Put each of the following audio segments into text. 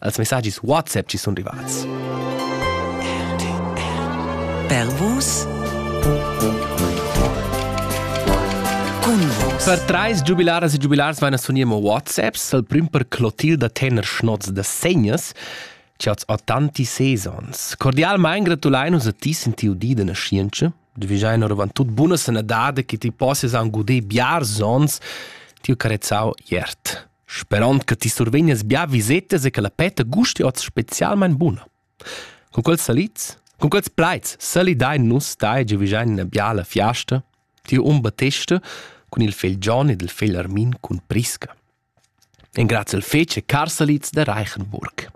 Els messagis WhatsApp ci sun rivats. Per vus Per trais giubilaras e giubilars vain a sunir mo WhatsApps, al prüm per clotil da tener schnoz da segnas, che oz ho tanti sezons. Cordialmein gratulein us a ti sin tiu di da nascienza. Du vigiain oravant tut buna sanadade che ti possias an guder biars ons, tiu carezzau iert. Sperond che ti survegnas bia visetas e che la peta gusti oz specialmein buna. Con quels salids, con quels plaids salidein nus dai giavischein ina biala fiasta, ti um Battesta cun il fegl John ed il fegl Armin cun Prisca. Engrazia il fetg e car salids da Reichenburg.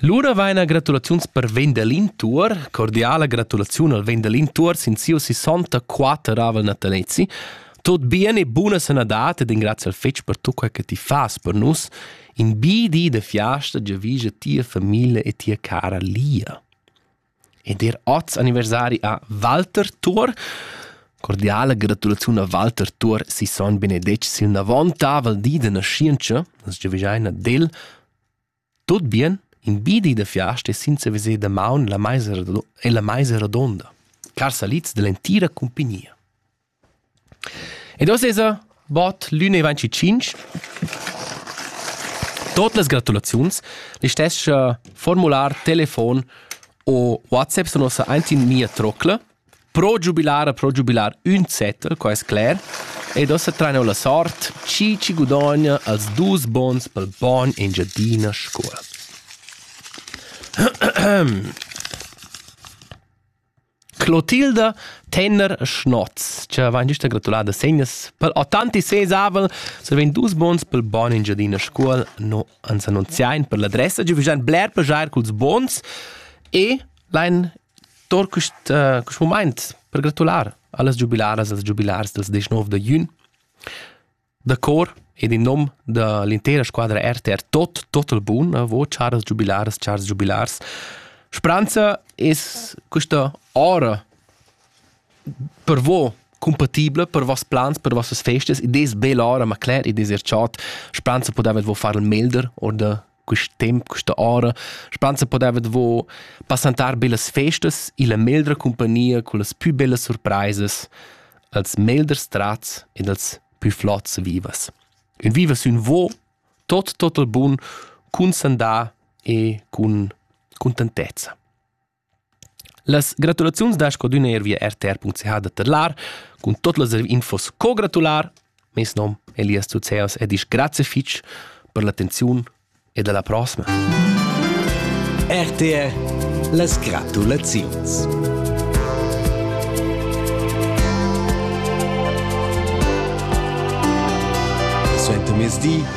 Lura vaina gratulaziuns per Vendelin Tuor, cordiala gratulaziun al Vendelin Tuor sin siu 64 natanezi. Tot bien e buna sanadad ed ingrazia al fetg per tu quei che ti fas per nus. In bi di de fiasta giavige tia famiglia e tia cara Lia. ed er oz anniversari a Walter Thor. Cordiala gratulaziun a Walter Thor, si son benedetg sil navon tavel di de nascientscha, as giavischeina del tot bien in bidi de fiasta e senza veser da maun la meisa e la meisa rodonda, car salids dell'entira cumpagnia. Ed oz esa bod l'ün e ventschitschinch. Tuot las gratulaziuns, listess cha formular, telefon o WhatsApp sun uossa aint in mia trocla. Pro giubilar a pro giubilar ün zeta, quai es cler. Ed ossa train eau la sort, chi chi gudogna als dus bons pel bogn Engiadina Scuol. Clotilda Tenner-Schnoz, che vain güsta gratulada segnas pel autentic sesavel, survain dus bons pel bon Engiadina Scuol no ans annunziain per l'adressa, giavüschan bler plaschair culs bons e lain tour quist, uh, quist mumaint per gratular a las giubilaras e als giubilars dels 19 da jün. da cor ed in nom da l'intera squadra RTR tot total bun vo chars giubilars chars giubilars Speranza es questa ora per vo compatibla per vos plans, per vossas festas ed es bel ora, ma cler, ed es er chat. Speranza podavet vo far il melder or da quist temp, questa ora, spansa podeva davo passantar be las festas illa meldra compagnia con las pü bellas surpraisas, als melders trats ed als pü flots vivas. Ün vivas ün vo, tot total bun, cun sandà e cun contentezza. Las gratulaziuns da scodüna eir via rtr.ch da tedlar. Cun tot las infos co gratular. Meis nom è Elias Zuzeos e disch grazie fich per l'attenziun ed alla prossima. RTR las gratulaziuns. Suenter mezdi